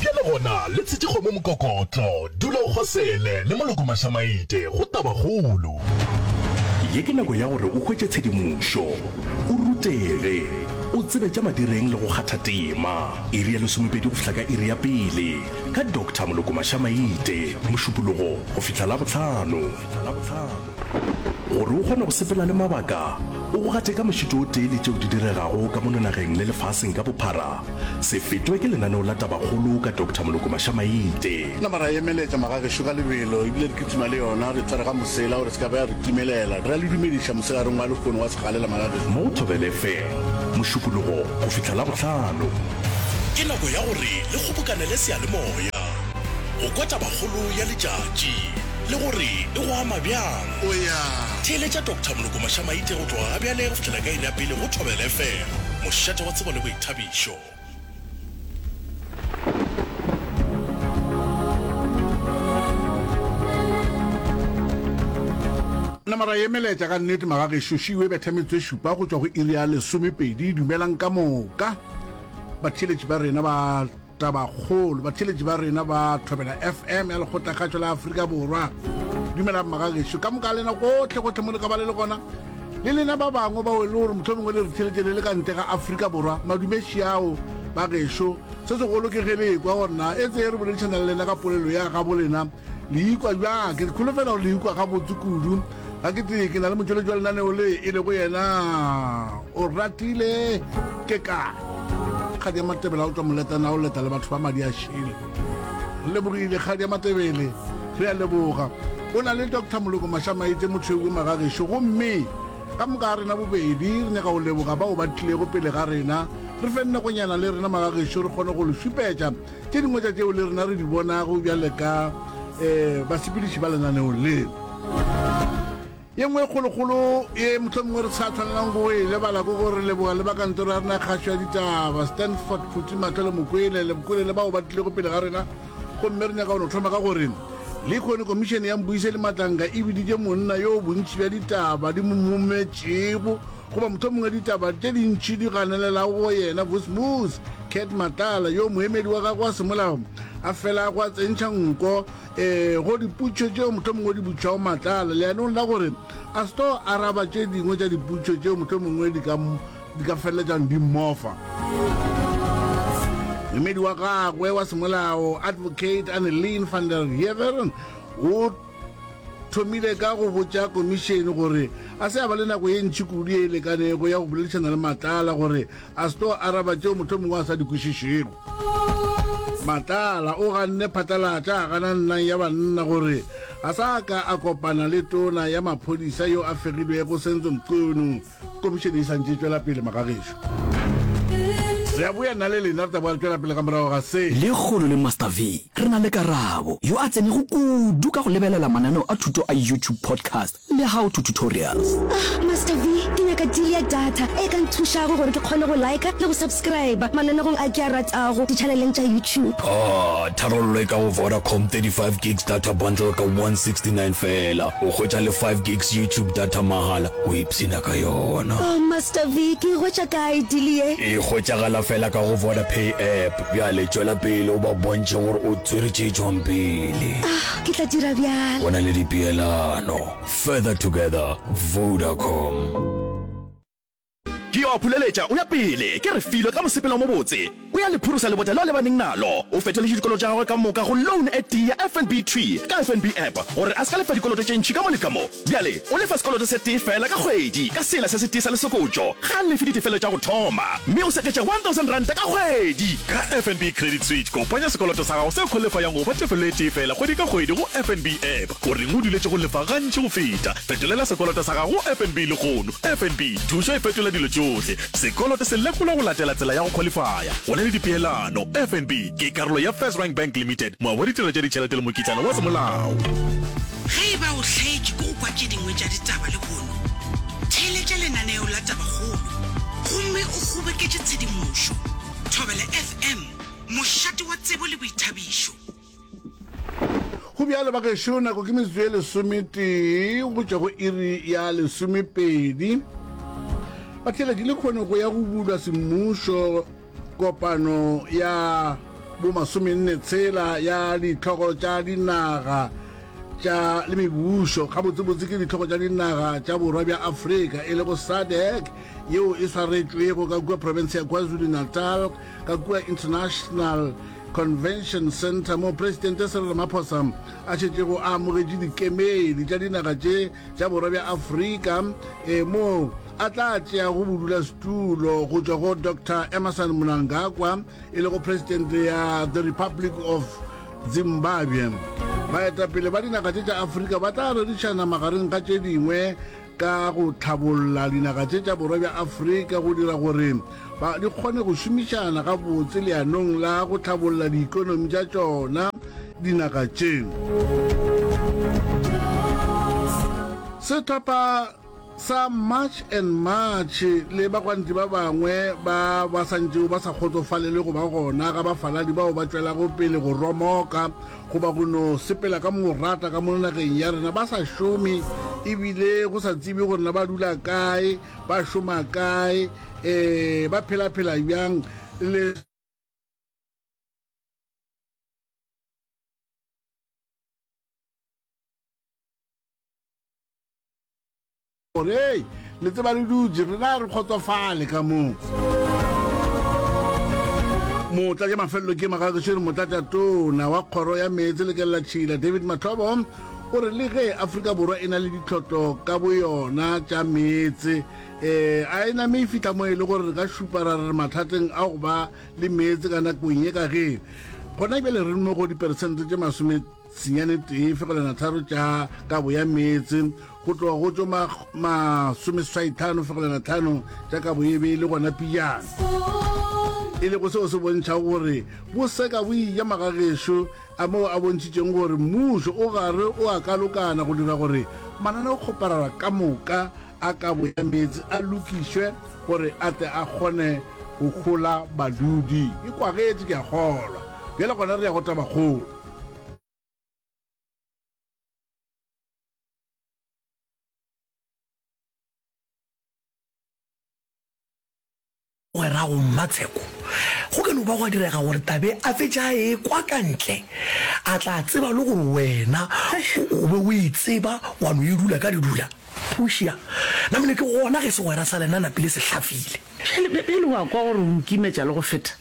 Bjale gona, le tshetše kgomo mokokotlo. Dula o kgosele, le moloko mašamaite. Go tabakgolo. Ye ke nako ya gore o hwetše tshedimošo, o rutege, o tsebe tša madireng le go kgatha tema. Iri ya lesomepedi go fihla ka iri ya pele, ka Doctor Moloko Mašamaite, Mošupologo go fihla Labohlano. Gore o kgone go sepela le mabaka, o go gateka mošito o tee le tšeo di diregago ka mono nageng le lefaseng ka bophara, se fetwe ke lenaneo la Tabakgolo ka Doctor Moloko Mashamaite. Nama ra e emeletša magagešo ka lebelo ebile re kitima le yona re tsware ga mosela gore e se ka ba ya re timelela. Re a le dumediša mosegareng wa lehono wa segalela magagešo. Mo Thobel FM, Mošupologo go fihla Labohlano. Ke nako ya gore le kgobokanele seyalemoya go kwa Tabakgolo ya letšatši. le gore e go ama bjang. O ya theeletša Doctor Moloko Mašamaite go tloga gabjale go fihlela ka iri ya pele go Thobela FM, mošate wa tsebo le boithabišo. Namara ye melaetša ka nnete magagešo šiu e betha metso e šupa go tšwa go iri ya lesomepedi. Dumelang ka moka batheeletši ba rena ba. Tabakgolo, Batheeletši ba rena ba Thobela FM ya Lekgotlakgatšo la Afrika Borwa. Dumela mmagagešo, ka moka lena gotlhe gotlhe mo le ka ba le le gona le lena ba bangwe bao e le gore motlhomong o le re theletše le le ka ntle ga aforika borwa madumeši ao ba gešo se segolo ke ge le ekwa gorena e tseye re boledišana le lena ka polelo ya gabo lena Le ikwa bjang? Ke kholofela gore le ikwa gabotse kudu. Ga ke tee ke na le motšweletši wa lenaneo le e lego yena Oratile ke ka kgadi ya matebele a o tswa moletana a o leta le batho ba madi a šele re lebogile kgadi ya matebele re a leboga o na le dr moloko mashamaitse motshweu o magagešo gomme ka moka ga rena bobedi re nyaka go leboga bao ba tlilego pele ga rena re fe nnegonyana le rena magagešo re kgone go le šupetša Tše dingwe tša tšeo le rena re di bonago bjale ka um basepediši ba lenaneong le. Ye nngwe e kgolokgolo ye mohlomongwe re sa tshwanelang go e lebala ke gore leboga le ba kantoro ya rena kgašo ya ditaba stanford phuti matlho le mokwele le bokole le bao ba tlilego pele ga rena gomme re nyaka go no thoma ka gore le kgone komišene ya mbuise le matlanga e biditše monna yo bontši bja ditaba di mo mometšego Goba mohlomongwe ditaba tše dintši di ganelelago go yena, Vusvus, Cat Matlala, yo moemedi wa gagwe wa semolao a felago a tsentšha nko e go diputšo tšeo mohlomongwe di butšwago Matlala leanong la gore a se tlo araba tše dingwe tša diputšo tšeo mohlomongwe di ka, di ka feleletsang di mmofa. Moemedi wa gagwe wa semolao, Advocate Anneleen van der Heever, o thomile ka go botša komišene gore a se a ba le nako ye ntši kudu ye e lekanego ya go boledišana le matlala gore a se tlo araba tšeo motho mongwe a sa di kwešišego matlala o ganne phatlalatša a gana nnang ya banna gore a sa ka a kopana le tona ya maphodisa yo a fegilwego senzo mqunu Komišene e santše e tšwela pele, magagešo. Re a boya nna le lena, re tla boa re tšwela pele ka morago ga se. Lekgolo le Master V, re na le Karabo, yo a tsenego kudu ka go lebelela mananeo a thuto a YouTube podcast le How to Tutorials. Ah, Master V, ke nyaka deal ya data e ka nthušago gore ke kgone go liker le go subscriber mananegong a ke a ratago di-channeleng tša YouTube. Ah, tharollo e ka go Vodacom, 35 gigs data bundle ka 169 feela, o hwetša le 5 gigs YouTube data mahala. O ipshina ka yona. Oh Master V, ke e hwetša kae deal ye? E hwetšagala fela ka go Vodapay app. Bjale tšwela pele o ba bontšhe gore o tswere tše tšwang pele. Ah, ke tla dira bjalo. O na le dipeelano. Further together, Vodacom. Ke yo a phuleletša o ya pele, ke re filo ka mosepelo o mobotse. O ya le phurusa lebota leo a lebaneng nalo. O fetoletše dikoloto tša gagwe ka moka go loan e tee ya FNB Tree ka FNB App gore a se ka lefa dikoloto tše ntši ka mo le ka mo. Bjale o lefa sekoloto se tee feela ka kgwedi ka sela se se tee sa lesokotšo. Ga a lefe ditefelelo tša go thoma mme o seketša R1,000 ka kgwedi. Ka FNB Credit Switch, kopanya sekoloto sa gago se kholefayang go fa tefelelo e tee feela kgwedi ka kgwedi go FNB App. O reng o duletše go lefa gantši go feta? Fetolela sekoloto sa gago go FNB lehono. FNB, thušo e fetola dilo tšohle. Sekoloto se lekolwa go latela tsela ya go khwalifaya go na le dipeelano. FNB ke karolo ya First Rank Bank Limited, moabi wa ditirelo tša ditšhelete le mokitlana wa semolao. Ge e ba o hlaetšwe ke go kwa tše dingwe tša ditaba lehono, theeletša lenaneo la Tabakgolo gomme o kgoboketše tshedimošo. Thobela FM, mošate wa tsebo le boithabišo. go bjalo ba gešo nako ke metsotso ye lesometee go tšwa go iri ya lesomepedi ba tlhela ke le kgone go ya go bulwa semmušo kopano ya bomasomenne tshela ya ditlhogo tša dinaga tša le mebušo gabotsebotse ke ditlhogo tša dinaga tša borwa bja afrika e lego sadec yeo e swaretšwego ka kua profense ya kwazulu-natal ka kua International Convention Center moo Presidente Cyril Ramaphosa a šetšego a amogetše dikemedi tša dinaga tše tša borwa bja Afrika e moo a tla tšeago bodulasetulo go tšwa go Dr Emmerson Mnangagwa e lego Presidente ya the Republic of Zimbabwe. Baetapele ba dinaga tše tša Afrika ba tla rerišana magareng ga tše dingwe ka go hlabolla dinaga tše tša Borwa bja Afrika go dira gore ba di kgone go šomišana gabotse leanong la go hlabolla diikonomi tša tšona dinaga tše. Sehlopha sa March and March le bagwanti ba bangwe ba ba santšego ba sa kgotsofalele go ba gona ga bafaladi bao ba tšwelago pele go romoka goba go no sepela ka morata ka mo nageng ya rena ba sa šome ebile go sa tsebe gore na ba dula kae ba šoma kae um ba phela-phela bjang le Gore, Hei, le tseba le dutše, rena re kgotsofale ka moo. Motla ja mafelelo ke magagešeri motlatša tona wa kgoro ya meetse le kelela tšhila David Mathobo o re le ge Afrika Borwa e na le ditlhotlo ka boyona tša meetse eh a e name e fihla mo e le gore re ka šupa ra re re mathateng a go ba le meetse ka nakong ye ka ge gona bjale re mo go diperesente tše masome Senyane tee fegelwana tharo tša kabo ya meetse go tloga go tšo masomeswaithano fegelwana tlhano tša kabo ye be e le gona pijana e lego seo se bontšha gore bo seka bo ija magagešo a moo a bontšhitšeng gore mmušo o gare o a kalokana go dira gore mananeo kgoparara ka moka a kabo ya meetse a lokišwe gore a tle a kgone go gola badudi e kwagetse ke a kgolwa bjale gona re ya go tabakgolo Mogwerago Mmatsheko, go ka no ba gwa direga gore Tabe a fetše a ekwa ka ntle, a tla tseba le gore wena o be o e tseba wa no e dula ka ledula. Portia, Namane ke gona ge segwera sa lena Napile se hlafile. Bjale wa kwa gore o nkimetša le go feta?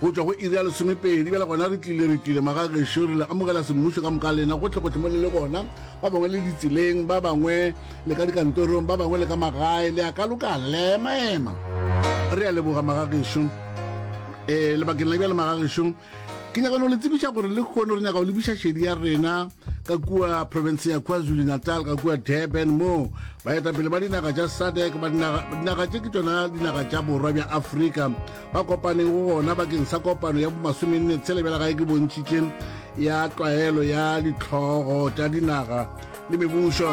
Go tšwa go iri ya lesomepedi, bjale gona re tlile, re tlile, maga gešo, re le amogela semmušo ka moka lena gohlegohle mo le le gona, ba bangwe le ditseleng, ba bangwe le ka dikantorong, ba bangwe le ka magae, le a ka lokala, le a emaema. Re a leboga, maga gešo. E, lebakeng la bjale, maga gešo, ke nyaka no le tsebiša gore le kgono re nyaka go lebiša šedi ya rena ka kua province ya kwazulu natal ka kua durban moo baetapele ba dinaga tša sadec ba dinaga tše ke tšona dinaga tša borwa bja afrika ba kopaneng go gona bakeng sa kopano ya bomasomenne tshele bjala gae ke bontšhitše ya tlwaelo ya ditlhogo tša dinaga le mebušo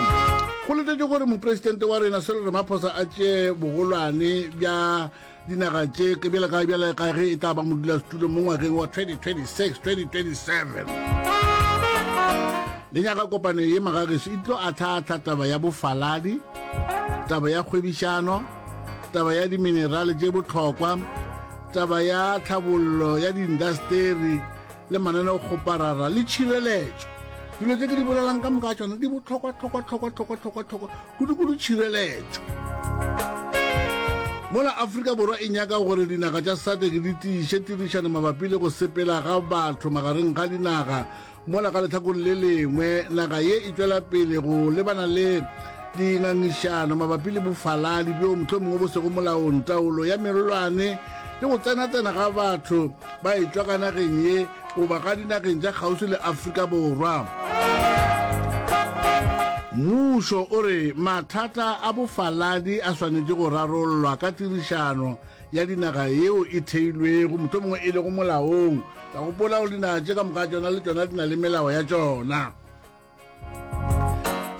go letetše gore mopresidente wa rena selo re maphosa a tšee bogolwane bja dinaga tše ke bjale ka bjale ka ge e tla ba modulasetulo mo ngwageng wa 2026 2027 le nyaka kopano ye magageso e tlo atlhaatlha taba ya bofaladi taba ya kgwebišano taba ya diminerale tše bohlokwa taba ya tlhabollo ya diindasteri le mananeo kgoparara le tšhireletšo dilo tse ke di bolelang ka moka tsone di botlhokwa tlhokwa tlhokwa tlhokwa tlhokwa tlhokwa kudu-kudu tšhireletšo mola aforika borwa e nyaka gore dinaga tša sadek di tiiše tirišano mabapi le go sepela ga batho magareng ga dinaga Mola ka lehlakong le lengwe, naga ye e tšwela pele go lebana le dingangišano mabapi le bofaladi bjo mohlomongwe bo sego molaong, taolo ya merolwane le go tsenatsena ga batho ba etšwa ka nageng ye goba ga dinageng tša kgauswi le Afrika Borwa. Mmušo o re mathata a bofaladi a swanetše go rarollwa ka tirišano ya dinaga yeo e theilwego, mohlomongwe e lego molaong. Ka gopola gore dinaga tše ka moka tšona le tšona di na le melao ya tšona.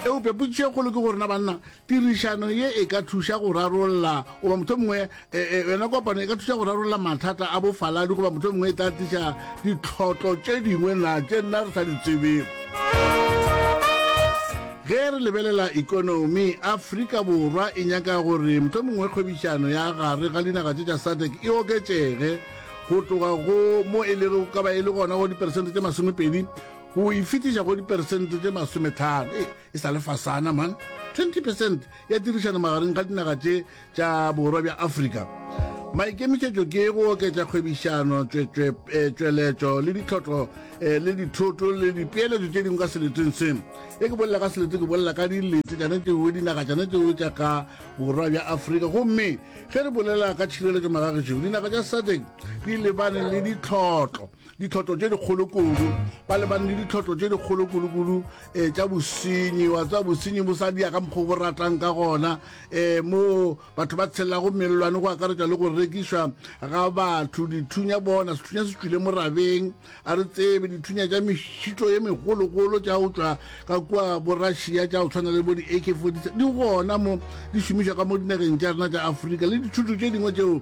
Eupša potšišo e kgolo ke gore na banna tirišano ye e ka thuša go rarolla goba motho mongwe e, e, yona kopano e ka thuša go rarolla mathata a bofaladi goba motho mongwe e tla tliša ditlhotlo tše dingwe na tše nna re sa di tsebego Ge re lebelela ekonomi, Afrika Borwa e nyaka gore mohlomongwe kgwebišano ya gare ga dinaga tše tša SADC e oketšege go tloga go mo e lego ka ba e le gona go diperesente tše masomepedi go e fetiša go diperesente tše masometlhano. Ee, e sa le fasana man! 20 percent ya tirišano magareng ga dinaga tše tša Borwa bja Afrika. Maikemišetšo ke go oketša kgwebišano, tšweletšo le ditlhotlo le dithoto le dipeeletšo tše dingwe ka seleteng se. E ke bolela ka selete ke bolela ka dilete tšane tšeo dinaga tšane tšeo tša ka Borwa bja Afrika. Gomme ge re bolela ka tšhireletšo magagešigo, dinaga tša SADC di lebane le ditlhotlo. ditlhotlo tše dikgolo kudu ba lebane le ditlhotlo tše dikgolo kudu-kudu um eh, tša bosenyi wa tseba bosenyi bo sa dia ka mokgwa bo ratang ka gona um mo batho ba tshelelago mellwane go akaretša le go rekišwa ga batho dithunya bona sethunya se tswile morabeng a re tsebe dithunya tša mešito ye megologolo tša go tswa ka kua borassia tša go tshwana le bo di-ak 47 di gona mo di šomišwa ka mo dinageng tša rena tša aforika le dithuto tše dingwe tšeo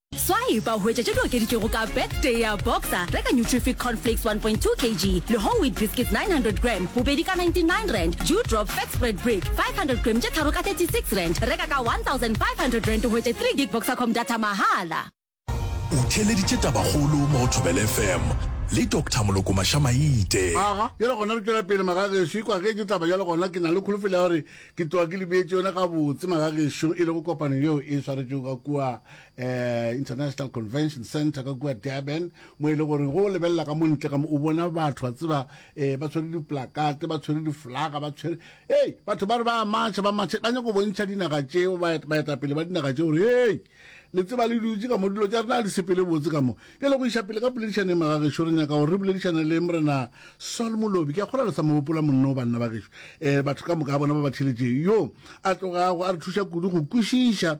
Swipe a hwetša tše di okeditšwego ka bag tee ya Boxer. Reka Nutrific Corn Flakes 1.2 kg le Whole Wheat Biscuits 900 gram, bobedi ka 99 rand, Dew Drop Fat Spread Brick 500 gram tše tharo ka 36 rand. Reka ka 1500 rand o hwetše 3 gig Boxercom data mahala. O theeleditše tabakgolo mo go Thobela FM le Doctor Moloko Mašamaite. Aga, bjale gona re tšwela pele magagešo. E kwa ge ke taba bjale gona ke na le kholofelo ya gore ke tloga ke le beetše yona gabotse magagešo e lego kopano yeo e swaretšego ka kua. eh, International Convention Center ka kua Durban mo e le gore go o lebelela ka montle ka mo o bona batho ba tseba eh, ba tshwere diplakate ba tshwere diflaga ba tshwere ei batho ba re ba matšha ba matšha ba nyako bontšha dinaga tšeo baetapele ba dinaga tšeo gore ei le tseba le dutse ka mo dilo tša rena di sepele botse ka mo ke le go iša pele ka poledišaneng magagešo re nyaka gore re boledišane le morena sol molobi ke a kgola le sa mogopola monno banna ba gešo um eh, batho ka moka bona ba ba theletšeng yo a tlogago a re thuša kudu go kwešiša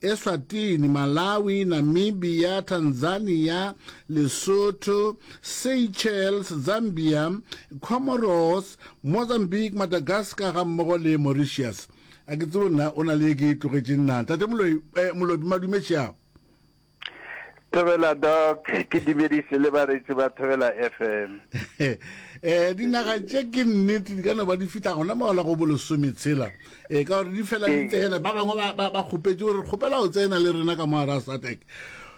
Eswatini, Malawi, Namibia, Tanzania, Lesotho, Seychelles, Zambia, Comoros, Mozambique, Madagascar ga mmogo le Mauritius. A ke tsebo nna o na le ye ke e tlogetšeng na? Tate Moloi, eh, Molobi, madume tšeago. Thobela Doc, ke dumedise le baretsi ba Thobela FM. Eh, dinaga tše ke nnete di ka no ba di fihla gona maola go bolesome tshela um eh, ka gore di fela di tsena ba bangwe ba kgopetse gore kgopela go tsena le rena ka mo a ra satek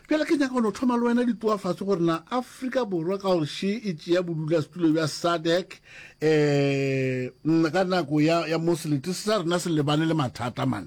jale ke nyaka no thoma le wena ditoa fatshe gore na aforika borwa ka gore she e tšea bodula setulo bja sadec um eh, ka nako ya moselete se sa rena se lebane le mathata mang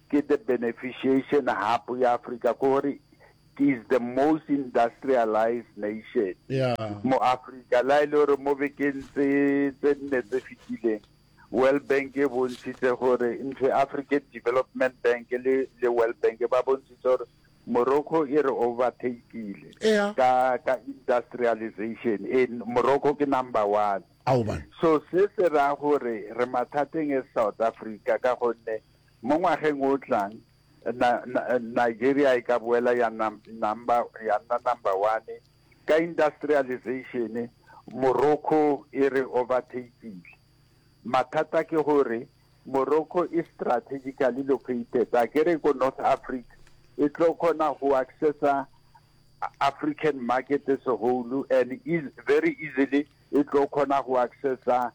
ke the beneficiation hub ya Africa ko gore is the most industrialized nation yeah. mo Africa la ile e gore mo bekeng tse tse nne tse fitileng World Bank e bontshitse gore ntho African Development Bank le le World Bank ba bontshitse gore Morocco e re overtakile yeah. ka ka industrialization in Morocco ke number 1 so se se ra gore re mathateng e South Africa ka gonne Mo ngwageng o tlang, Nigeria e ka boela ya nna number one ka industrialization, Morocco e re overtake-ile. Mathata ke gore Morocco e strategically located, a ke re ko North Africa e tlo kgona go accessa African market as a whole and very easily e tlo kgona go accessa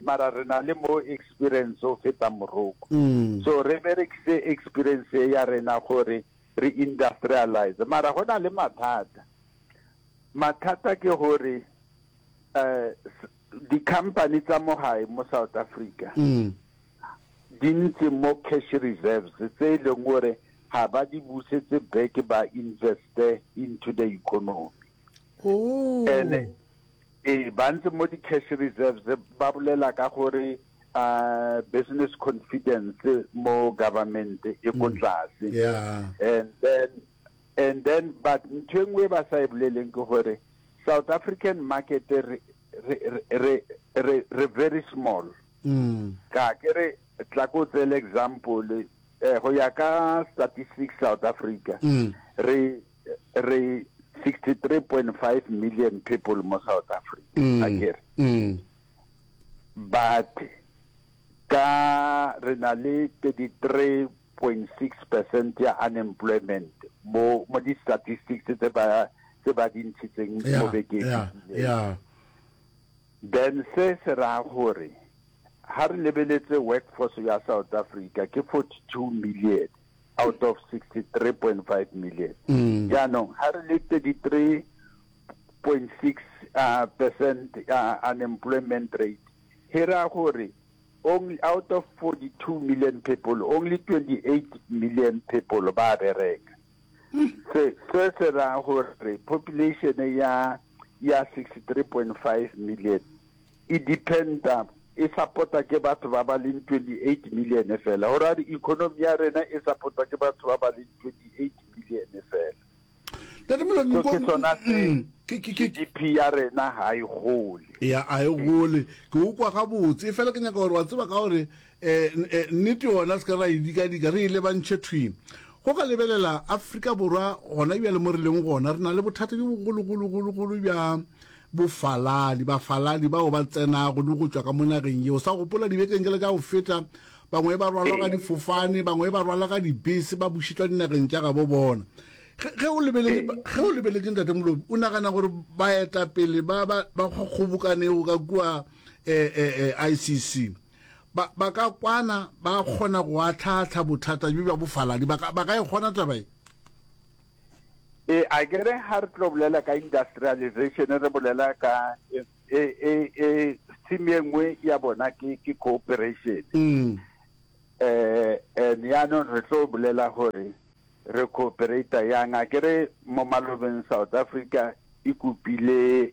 mara re na le more experience go feta Moroko. So re berekise experience e ya rena gore re industrialize. Mara go na le mathata. Mathata ke gore um di-company tsa mo gae mo South Africa di ntse mo cash reserves tse e leng gore ga ba di busetse back ba investe into the economy. Oh. Ene eh ba ntse mo di cash reserves ba bolela ka gore uh business confidence mo government e ko mm. tlase yeah and then and then but ntho engwe ba sa ibuleleng e ke gore south african market re re re re very small mm ka ke re tla ko tsele example eh go ya ka statistics south africa mm. re re 63.5 million people mo south africa mm. a kere mm. but ka re na le 33.6 percent ya unemployment mo mo di-statistics tse ba tse ba di ntshitseng mo bekeng then se se raya gore ha re lebeletse workforce ya south africa ke 42 million out of 63.5 million mm. jaanong ga re le 33.6 uh, percent uh, unemployment rate he ra gore only out of 42 million people only 28 million people ba bereka mm. se se se ra gore population ya ya 63.5 million e dependa, e support-a ke batho ba ba leng 28 million fela, gore a re economy ya rena e support-wa ke batho ba ba leng 28 million fela. Ntate Moloi, So ke sona se mm, ke- ke- ke- GDP ya rena ha e gole. ya a e gole ke o kwa gabotse e fela ke nyaka gore wa tseba ka gore E, e, nnete gona se ka ra e dikadika re e lebantšhe thwi. Go ka lebelela Afrika Borwa gona bjale mo re leng gona, re na le bothata bjo bogologologologolo bja bofaladi, bafaladi bao ba tsenago le go tšwa ka mo nageng yeo. Sa gopola dibekeng jela tša go feta, bangwe ba rwalwa ka difofane, bangwe ba rwala ka dibese, ba bušetšwa dinageng tša gabo bona. Ge o lebeletse ntate Molobi, o nagana gore baetapele ba kgobokanego ka kua um eh, eh, eh, ICC, ba, ba ka kwana ba kgona go atlhaatlha bothata bjo bja bofaladi ba ka, ba ka e kgona taba e e a ke re ga re tlo bolela ka industrialization re bolela ka e e e, e theme ye nngwe ya bona ke ke cooperation mm. eh and yaanong re tlo bolela gore re cooperata yang a ke re mo malobeng south africa e kopile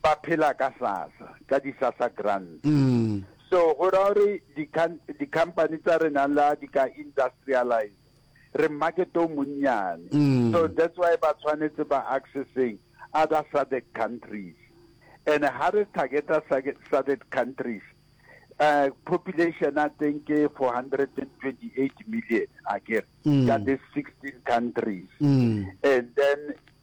Ba phela ka sasa, ka di sasa grants. So go ra gore di company tsa rena la di ka industrialize re market o monnyane. So that's why ba tshwanetse ba accessing other SADC countries. And ha re targeta SADC countries, uh, population I think 428 million, I guess, mm. that is 16 countries. Mm. And then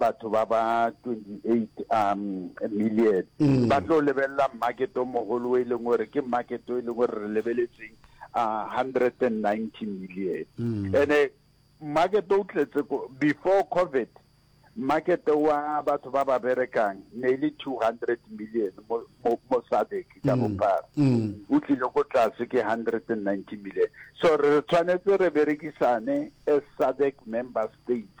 batho ba ba 28 um million ba tlo lebelela market o mogolo e leng gore ke market e leng gore re lebeletseng uh, 190 million mm. ene market o tletse before covid market wa batho ba ba berekang ne e le 200 million mo sadek ka mm, bophara mm. o tlile go tlase ke 190 million so re tshwanetse re berekisane as sadek member states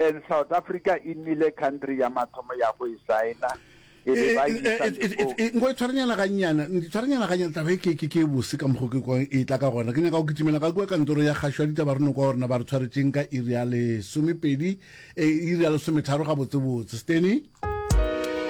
And South Africa e nnile country ya mathomo ya go e signa e be ba isa le go nko e tshwarenyana ga nnyana tshwarenyana ga nnyana taba e ke ke ke bose ka mokgo ke kwa e tla ka gona ke nyaka go kitimela ga kwa kantoro ya gasho ya ditaba reno kwa rena ba re tshwaretseng ka iri ya lesomepedi e iri ya lesometharo ga botse botse steny